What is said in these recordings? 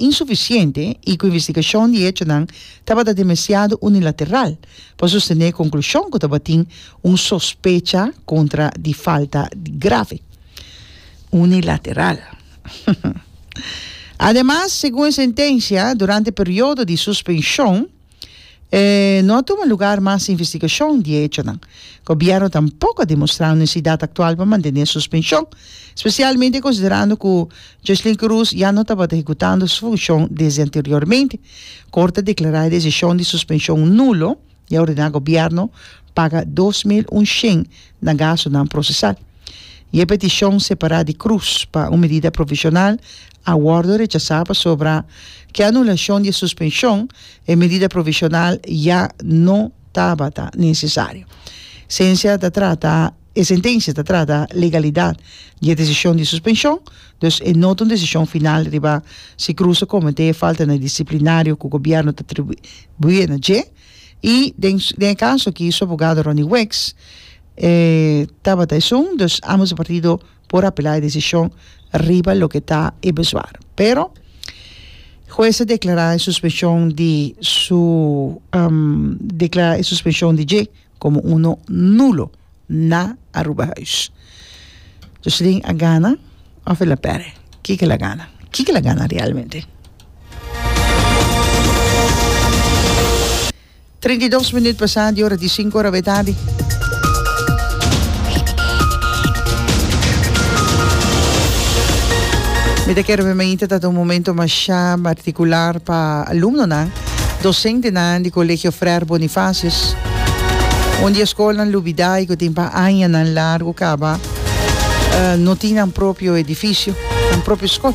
insufisiente i ku investigashon di hechonan tabata demasiado unilateral pa sostené konklushon ku tabatin un sospecha kontra di falta grave. Unilateral. Ademas, segun e sentensia, durante periodo di suspenshon, E no a tuma lugar mas investigashon di e echonan. Gobièrnu tampoko a demostrá un nesesidat aktual pa mantené suspenshon, spesialmente konsiderando ku Jocelyn Cruz ya no tabata hekutando su funshon desde anteriormente. Korte a deklará e desishon di suspenshon nulo i a ordená gobièrnu paga dos mil unshen na gastunan prosesal. Y e peticion separá di cruz pa un medida provisional a wordo rechasá pasobra cu e anulacion di e suspension e medida provisional ya no tabata necesario. Sencia ta trata, e sentencia ta trata legalidad di e decision di suspension, dus e no ta un decision final riba si Cruz a cometé faltanan disciplinario cu gobierno ta atribué na dje. Y den den e caso aki su abogado Ronnie Weeks, E tabata esun, dus ambos e partido por apelá e desishon riba loke ta e bezwaar. Pero, hues a deklará e suspenshon di su deklará e suspenshon di dje komo uno nulo na Arubahuis. Joselin a gana òf el a pèrdè? Kiko el a gana? Kiko el a gana realmente? Treinta i dos minüt pasá di ora di sinku ora b'e tardi. Mi ta kere memente ta ta un momento mashá partikular pa alumnonan, dosentenan di Colegio Freir Bonifacius, un di e skolnan lubidái ku tin pa añanan largu kaba no tin nan propio edifisio, nan propio skol.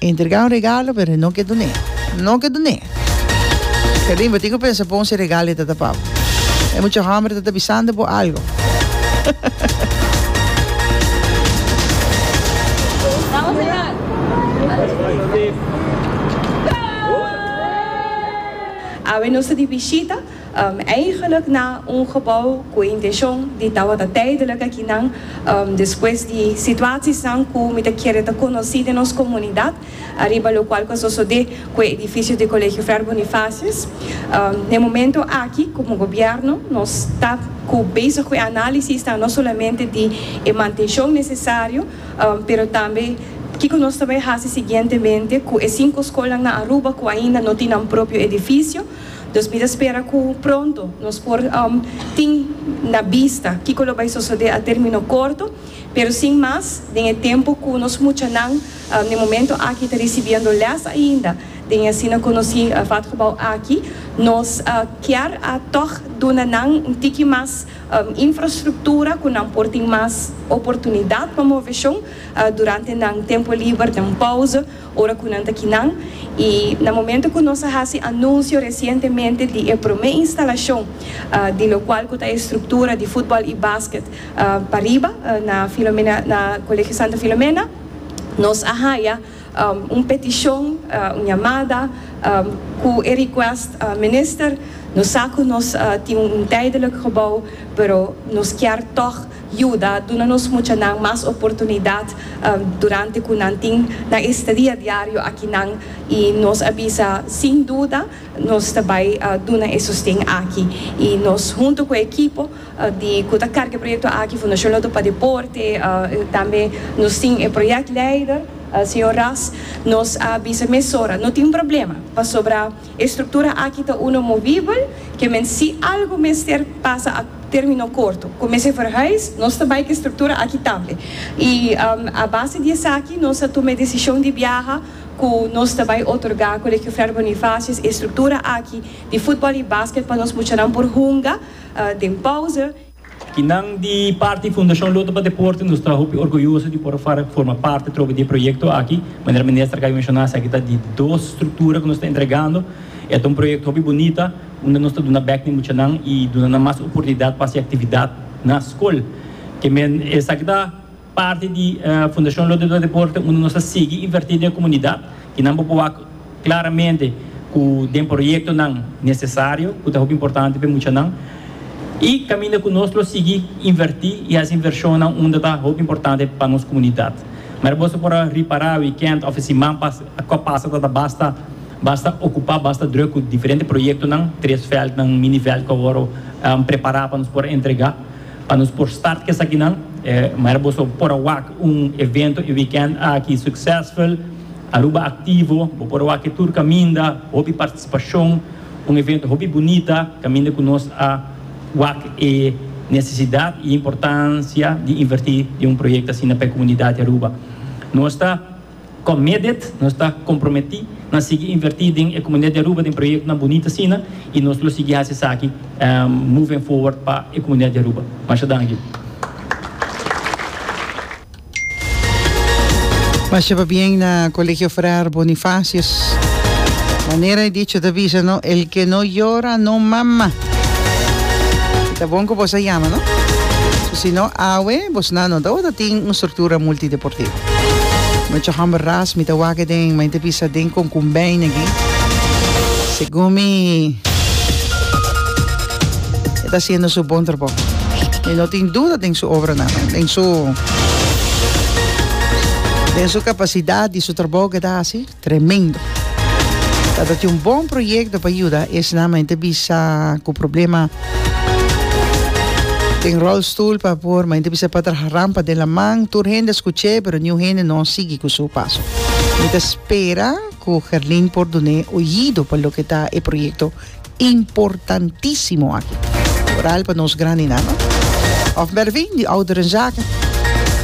Entrega un regalo pero e no ke dun'é. No ke dun'é. Kelin, bo tin ku pensa bon si e regalo e ta ta pa bo. E mucha hòmber ta ta bisando bo algu. Awe nos ta di bishita. Eigenlik na un gebou ku e intenshon di tabata tijdelik akinan, despues di situasisnan ku mi ta kere ta konosí den nos komunidat, ariba lokual ku a sosodé ku e edifisio di Kolegio Fray Bonifasius. Na e momentu aki, komo gobièrnu, nos ta ku bezig ku e análisisnan no solamente di e mantenshon nesesario, pero tambe kiko nos ta bai hasi siguientemente ku e sinku skolnan na Aruba ku ainda no tin nan propio edifisio. Dus mi ta spera cu pronto nos por tin na bista kico lo bay sosode a termino corto, pero sin mas den e tempo cu nos muchanan na e momento aki ta ricibiendo les ainda den e asina conoci Vatgebouw aki, nos kier a toch duna nan un tiki mas infrastructura cu nan por tin mas oportunidad pa move shon durante nan tempo liber, nan pauze, ora cu nan ta kinan y na momento cu nos a haci anuncio recientemente di e prome instalacion di lo cual cu ta e structura di futbol y basket pa riba na Filomena na Colegio Santa Filomena nos a haya un peticion un yamada cu e request Minister nos sa cu nos tin un tijdelijk gebouw pero nos kier toch yuda duna nos muchanan mas oportunidat durante ku nan tin nan estadia diario aki nan i nos a bisa sin duda nos ta bai duna e sosten aki i nos huntu ku e ekipo di ku ta karga e proyekto aki Fundashon Loto pa Deporte tambe nos tin e proyek leider señor Ras nos a bisa mesora no tin problema pasobra. E struktura aki ta uno movibel, ke men si algu mester pasa a termino korto ku mester verhuis, nos ta bai ku e struktura aki tambe. I a base di esaki nos a tuma e desishon di biaha ku nos ta bai otorgá Colegio Frer Bonifacius e struktura aki di futbòl i basket pa nos muchanan por hunga den pause. Kinan di parti Fundashon Loto pa Deporte nos ta hopi orguyoso di por forma parti atrobe di e proyekto aki. Manera Minister a kaba di menshona esaki ta di dos struktura ku nos ta entregando. E ta un proyekto hopi bunita unda nos ta duna bek na e muchanan i duna nan mas oportunidat pa hasi aktividat na skol. Ke men esaki ta. Parti di Fundacion Lote Dua Deporte unda nos a sigui inverti den e comunidad y nan bo por wak claramente cu den proyectonan necesario cu ta hopi importante pa e muchanan y caminda cu nos lo sigui inverti y haci inversionnan unda ta hopi importante pa nos comunidad. Mera boso por a ripara weekend of siman pas a cop pasa ta ta basta basta ocupa basta druk cu diferente proyectonan tres veldnan mini veld cu awor a prepara pa nos por entrega. Pa nos por start cu esakinan, e manera boso por a wak un evento e weekend aki succesful, Aruba Activo, bo por a wak e tur caminda, hopi participacion, un evento hopi bunita, caminda cu nos a wak e necesidad y importancia di inverti den un proyecto asina pa e comunidad di Aruba. Nos ta Con MEDET nos ta comprometí na sigui invertí den e comunidad di Aruba den proyectonan bunito asina y nos lo sigui haci esaki moving forward pa e comunidad di Aruba. Masha danki. Masha pabien na Colegio Fraar Bonifacius. Manera e dicho ta bisa no, El que no llora no mama. Y ta bon cu bos a yama no. So si no awe bos nan no ta ora tin un structura multideportivo. Mucha hamber ras mi ta wak den ma inte bisa den konkumbijn aki. Segun mi e ta siendo su bon trabou. Mi no tin duda den su obra nan, den su den su kapasidat di su trabou ke ta hasi. Tremendo. Tabatin un bon proyecto pa yuda esnan, ma henter bisa cu problema den rolstoel pa por, ma henter bisa pa traha rampa den laman. Tur hende a scuch'e, pero niun hende no a sigui cu su paso. Mi ta spera cu Gerlin por dun'e oyido pa loke ta e proyecto importantisimo aki. Oral pa nos graninan, no? Of Mervin di Ouderenzaken.